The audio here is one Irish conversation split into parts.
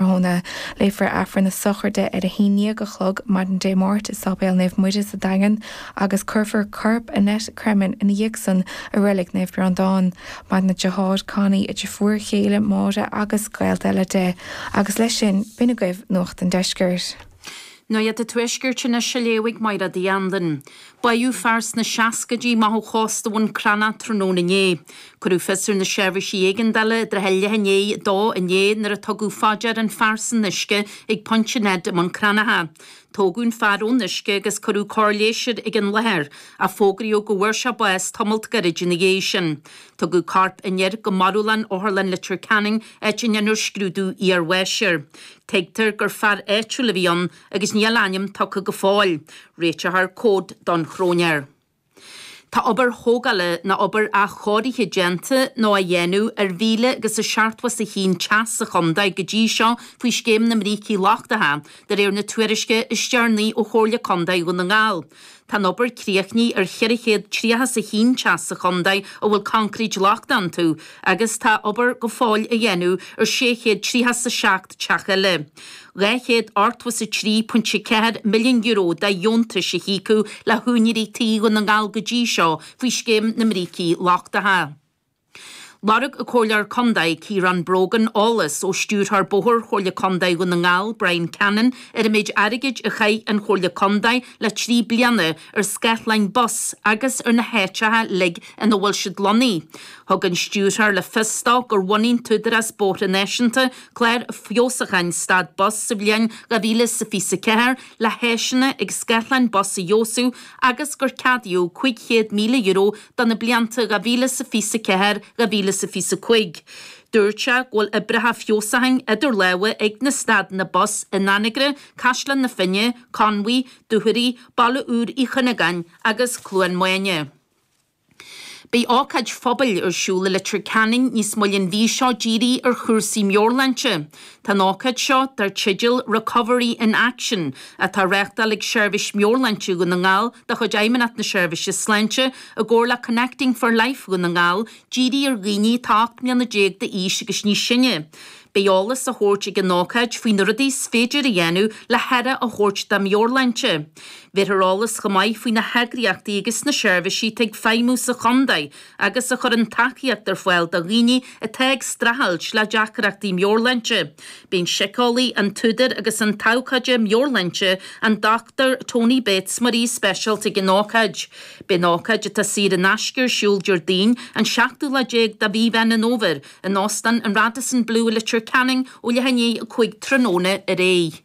Tráthnóna, léifear Aifreann na sochraide ar a haon ndéag a chlog maidin Dé Máirt i Sáipéal Naomh Muire sa Daingean agus cuirfear corp Annette Cremin ina dhiaidh san i Reilig Naomh Breandán. Maireann a deartháir Connie, a deirfiúr chéile Máire agus gaolta eile di. Agus leis sin, b'in agaibh Nuacht an Deiscirt. Nuacht an Tuaiscirt anois a léifidh Máire D. Andan. Báitheadh fear sna seascaidí amach ó chósta Bhun Cranncha tráthnóna inné. Cuireadh fios ar na seirbhísí éigeandála i dtrátha leath i ndiaidh a dó inné nuair a tugadh fá dear an fear san uisce ag Pointe Ned i mBun Cranncha. Tógadh an fear ón uisce agus cuireadh cóir leighis air ag an láthair, ach fógraíodh go bhfuair sé bás tamalt gairid ina dhiaidh sin. Tugadh corp an fhir go marbhlann Otharlann Leitir Ceanainn, áit a ndéanfar scrúdú iar-bháis air. Tuigtear gur fear áitiúil a bhí ann, agus níl a ainm tugtha go fóill. Réiteofar comhad don chróinéir. Tá obair thógála nó obair athchóirithe déanta nó á dhéanamh ar mhíle agus a seachtó is a haon teach sa chontae go dtí seo faoi Scéim na mBrící Lochtacha, de réir na tuairisce is deireanaí ó Chomhairle Contae Dhún na nGall. Tá an obair críochnaithe ar cheithre chéad tríocha is a haon teach sa chontae a bhfuil concrete lochtach iontu agus tá obair go fóill á dhéanamh ar sé chéad tríocha is a seacht teach eile. €283.4 milliún de dheontais a híocadh le húinéirí tí Dhún na nGall go dtí seo faoi scéim na mbrící lochtacha. Lorg an Comhairleoir Contae, Ciarán Brogan eolas ó Stiúrthóir Bóthair Chomhairle Contae Dhún na nGall, Bryan Cannon ar an méid airgid a chaith an Chomhairle Contae le trí bliana ar scáthláin bus agus ar na háiteacha uilig ina bhfuil siad lonnaithe. Thug an Stiúrthóir le fios dó gur bhunaigh an tÚdarás Bóithre Náisiúnta clár feabhsúcháin stad bus sa bhliain 2024 le háiseanna agus scáthláin bus a fheabhsú agus gur ceadaíodh €500,000 do na blianta 2024, 2025. Dúirt sé go bhfuil oibreacha feabhsúcháin idir lámha ag na stadanna bus in Anagaire, Caisleán na Finne, Conmhaigh, Dúchoraidh, Baile Úr Uí Chuinneagáin agus Cluain Maine. Beidh ócáid phobail ar siúl i Leitir Ceanainn níos moille an mhí seo dírithe ar chúrsaí meabhairshláinte. Tá an ócáid seo, dar teideal Recovery in Action, atá á reáchtáil ag Seirbhís Meabhairshláinte Dhún na nGall de chuid Fheidhmeannacht na Seirbhíse Sláinte i gcomhar le Connecting for Life Dhún na nGall, dírithe ar dhaoine atá 18 mbliana d'aois agus níos sine. Beidh eolas á thabhairt ag an ócáid faoi na rudaí is féidir a dhéanamh le haire a thabhairt dá meabhairshláinte. Bhéarfar eolas chomh maith faoi na heagraíochtaí agus na seirbhísí atá ag feidhmiú sa chontae, agus a chuireann tacaíocht ar fáil do dhaoine atá ag streachailt le deacrachtaí meabhairshláinte. Beidh an síceolaí, an t-údar agus an t-abhcóide meabhairshláinte, an Dochtúir Tony Bates mar aoi speisialta ag an ócáid. Beidh an ócáid atá saor in aisce ar siúl Déardaoin an seachtú lá déag de mhí Mheán an Fhómhair in Óstán an Radisson Blu i Leitir Ceanainn ó leath i ndiaidh a cúig tráthnóna ar aghaidh.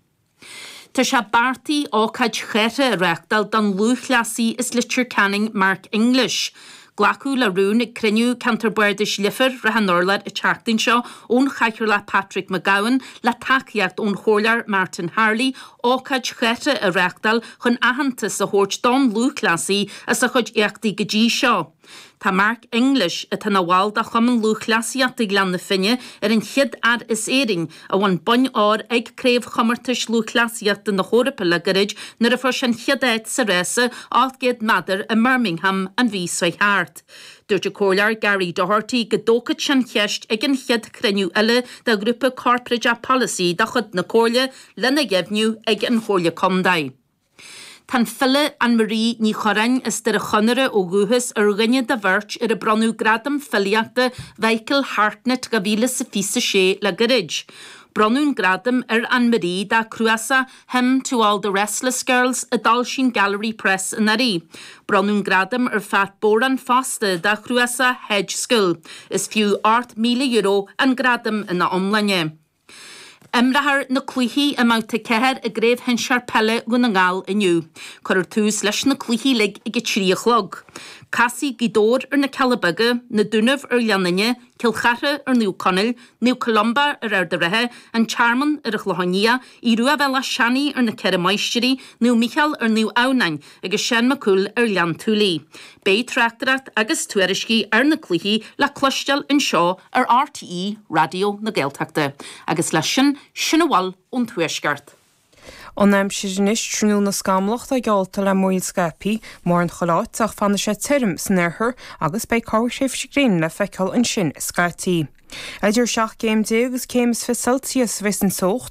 Tá sé beartaithe ócáid chathartha a reáchtáil don lúthchleasaí as Leitir Ceanainn Mark English. Glacadh le rún ag cruinniú Cheantar Bardais Leifir Srath an Urláir an tseachtain seo ón Chathaoirleach Patrick McGowan, le tacaíocht ón Chomhairleoir Martin Harley, ócáid chathartha a reáchtáil chun aitheantas a thabhairt don lúthchleasaí as a chuid éachtaí go dtí seo. Tá Mark English, atá ina bhall de Chumann Lúthchleasaíochta Ghleann na Finne, ar an chéad fhear as Éirinn a bhain bonn óir ag Craobhchomórtais Lúthchleasaíochta na hEorpa le gairid nuair a fuair sé an chéad áit sa rása 800 meadar i mBirmingham an mhí seo thart. Dúirt an Comhairleoir Gary Doherty go dtógfadh sé an cheist ag an chéad chruinniú eile de ghrúpa corparáideach polasaí de chuid na Comhairle lena dheimhniú ag an Chomhairle Contae. Tá an file AnnMarie Ní Churráin, as Doire Chonaire ó dhúchas, ar dhuine de bheirt ar ar bronnadh Gradam Filíochta Mhichael Hartnett 2026 orthu le gairid. Bronnadh an gradam ar AnnMarie dá cnuasach Hymn to all the Restless Girls, a d'fhoilsigh an Gallery Press anuraidh. Bronnadh an gradam ar Phat Boran fosta dá chnuasach Hedge School. Is fiú €8,000 an gradam ina iomláine. Imreofar na cluichí i mBabhta 4 i gCraobh Shinsear Peile Dhún na nGall inniu. Cuirfear tús leis na cluichí uilig ag 3 a chlog. Casfaidh Gaoth Dobhair ar na Cealla Beaga, Na Dúnaibh ar Ghleann Fhinne, Cill Chartha ar Naomh Conaill, Naomh Columba ar Ard a' Rátha, An Tearmann ar an gClochán Liath, Aodh Ruadh Bhéal Átha Seanaidh ar na Ceithre Máistirí, Naomh Micheál ar Naomh Adhamhnáin. agus Seán Mac Cumhaill ar Ghleann tSúilí. Beidh tráchtaireacht agus tuairiscí ar na cluichí le cloisteáil anseo ar RTÉ Raidió na Gaeltachta agus leis sin sin a bhfuil ón Tuaisceart. An aimsir anois, tráthnóna scamallach atá geallta le múraíl scaipthe mórán chuile áit, ach fanfaidh sé tirim san oirthear agus beidh corrthréimhse gréine le feiceáil ansin scaití. Idir 17 céim agus céim is fiche Celsius a bheidh sa teocht.